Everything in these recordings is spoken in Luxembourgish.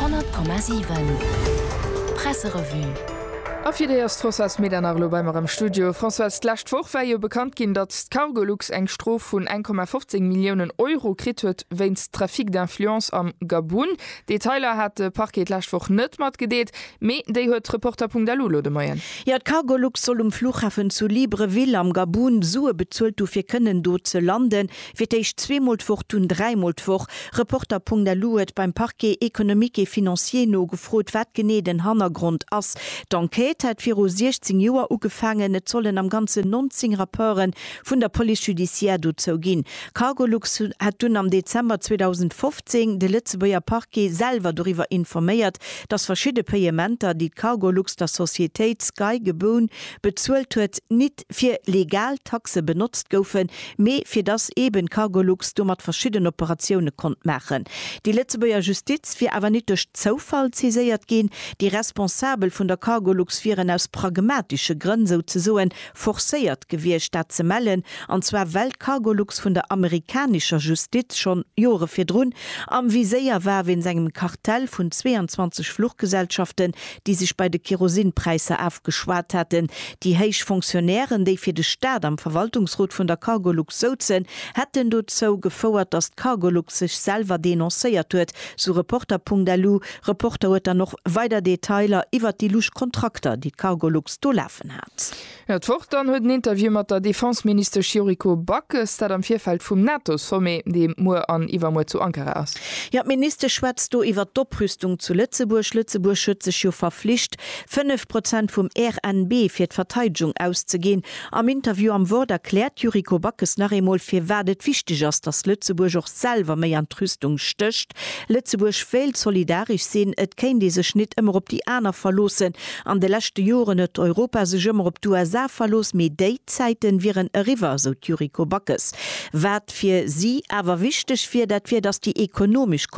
100,7 Presserevue A fir déi ass d'Françoise Medernach elo bei mer am Studio. Françoise, d'lescht Woch war jo bekannt ginn, datt d'Cargolux eng Strof vun 1,15 Milliounen Euro kritt huet wéinst Trafic d'influence am Gabun. Detailer hat de Parquet d'lescht Woch net matgedeelt, mee déi huet Reporter.lu elo de Moien. Jo, d'Cargolux soll um Fluchhafen zu Libreville am Gabun Sue bezuelt hu fir kënnen do ze landen. Fir d'éischt zweemol d'Woch, dunn dräimol d'Woch. Reporter.lu huet beim Parquet économique et financier nogefrot, wat genee den Hannergrond ass. D'Enquête hätt viru 16 Joer ugefaangen. Et sollen am Ganzen 19 Rapporte vun der Police judiciaire dozou ginn. Cargolux hätt dunn am Dezember 2015 de Lëtzebuerger Parquet selwer doriwwer informéiert, datt verschidde Payementer, déi d'Cargolux der Societéit Sky Geboun bezuelt huet, nit fir legal Taxe benotzt goufen, mee fir dass eben d'Cargolux domat verschidden Operatioune konnt maachen. Déi Lëtzebuerger Justiz wier awer nit duerch Zoufall saiséiert ginn, déi Responsabel vun der Cargolux wieren aus pragmatische Grënn souzesoen forcéiert gewiescht dat ze mellen, an zwar well d'Cargolux vun der amerikanischer Justiz schonn Jore virdrun am Viséier war wéinst engem Kartell vun 22 Fluchgesellschaften, déi sech bei de Kerosinpräisser afgeschwat haten. Déi héich Fonctionnairen, déi fir de Staat am Verwaltungsrot vun der Cargolux souzen, hätten dozou gefouert, datt d'Cargolux sech selwer denoncéiert huet, sou Reporter.lu. Reporter huet dann och weider Detailer iwwert déi lusch Kontrakter, déi d'Cargolux do lafen hat. Jo, d'Woch dann huet en Interview mat der Defenseministesch Yuriko Backes, dat am Virfeld vum NATO-Sommet, dee muer an iwwermuer zu Ankara ass. Jo, d'Ministesch schwätzt do iwwert d'Oprüstung zu Lëtzebuerg. Lëtzebuerg huet sech jo verflicht, 5 Prozent vum RNB fir d'Verteidegung auszeginn. Am Interview am Wort erkläert d'Yuriko Backes nach eemol, firwat et wichteg ass, datt Lëtzebuerg och selwer méi an d'Rüstung stécht. Lëtzebuerg wéilt solidaresch sinn, et kéint ee sech nit ëmmer op déi aner verloossen, An de leschte Joren huet Europa sech ëmmer op d'USA verlooss, mee déi Zäiten wieren eriwwer, esou d'Yuriko Backes. Wat fir si awer wichteg wier, dat wier, datt déi ekonomesch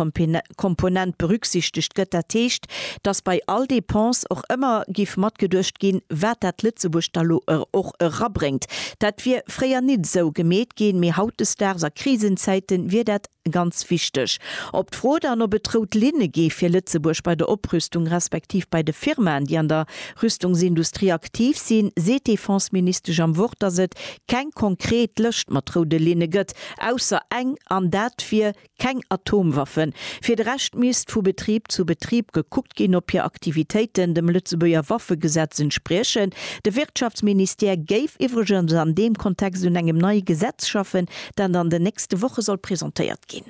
Komponent berücksichtegt gëtt. Dat heescht, datt bei all Dépense och ëmmer giff matgeduecht ginn, wat dat Lëtzebuerg da lo och erabréngt. Dat wier fréier nit esou gemeet ginn, mee hautdesdaags a Krisenzäiten wier dat Ganz wichteg, Op d'Fro dann, ob et rout Linne gi fir Lëtzebuerg bei der Oprüstung respektiv bei de Firmaen, déi an der Rüstungsindustrie aktiv sinn, seet d'Defenseministesch am Wort, datt et keng konkret Lëscht mat roude Linne gëtt, ausser eng, an dat wier, keng Atomwaffen. Fir de Rescht misst vu Betrib zu Betrib gekuckt ginn, ob hir Aktivitéiten dem Lëtzebuerger Waffegesetz entspriechen. De Wirtschaftsministère géif iwwregens an deem Kontext un engem neie Gesetz schaffen, dat an den nächste Woche soll presentéiert ginn.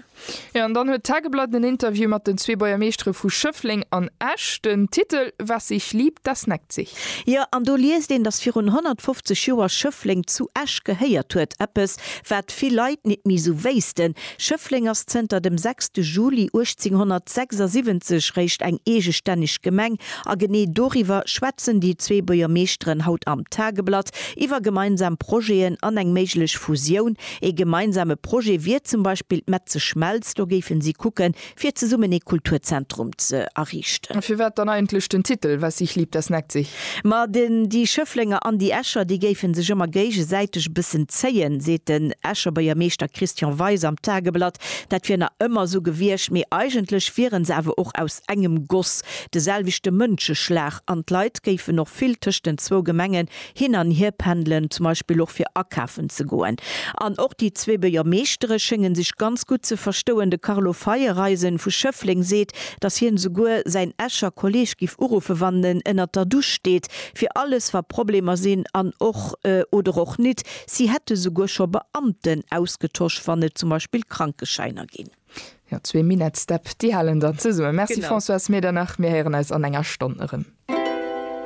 Jo, an dann huet d'Tageblatt en Interview mat den zwee Buergermeeschtere vu Schëffleng an Esch. Den Titel Was sich liebt, das neckt sich. Jo, an do liest een, datt virun 150 Joer Schëffleng zu Esch gehéiert huet, eppes, wat vill Leit nit méi esou wéissten. Schëffleng ass zënter dem 6 Juli 1876 réischt eng eegestänneg Gemeng, a genee doriwwer schwätzen déi zwee Buergermeeschteren haut am Tageblatt. Iwwer gemeinsam Projeten an eng méiglech Fusioun. Ee gemeinsame Projet wier zum Beispill d'Metze Schmelz. Do géife si kucke fir zesummen ee Kulturzentrum ze erriichten. Firwat dann eigentlech den Titel Was sich liebt, das neckt sich? Ma den déi Schëfflenger an déi Escher, déi géife sech ëmmer géigesäiteg e bëssen zéien, seet den Escher Beiermeeschter Christian Weis am Tageblatt. Dat wier nach ëmmer esou gewiescht, mee eigentlech wiere se awer och aus engem Goss, de selwechte Mënscheschlag. An d'Leit géifen och vill tëscht den zwou Gemengen hin an hier pendelen, zum Beispill och fir akafen ze goen. An och déi zwee Beuermeeschtere schénge sech ganz gutt ze verstouen. De Carlo Feiereisen vu Schëffleng seet, datt hien esouguer säin Escher Kolleeg giff uruffen, wann en ënnert der Dusch steet, fir alles wa Problemer sinn an och oder och nit. Si hätt esouguer scho Beamten ausgetosch, wann et zum Beispill Krankeschäiner ginn. Jo, zwee Minett-Step, déi halen dann zesummen. Merci Françoise Medernach, mir héieren eis an enger Stonn erëm.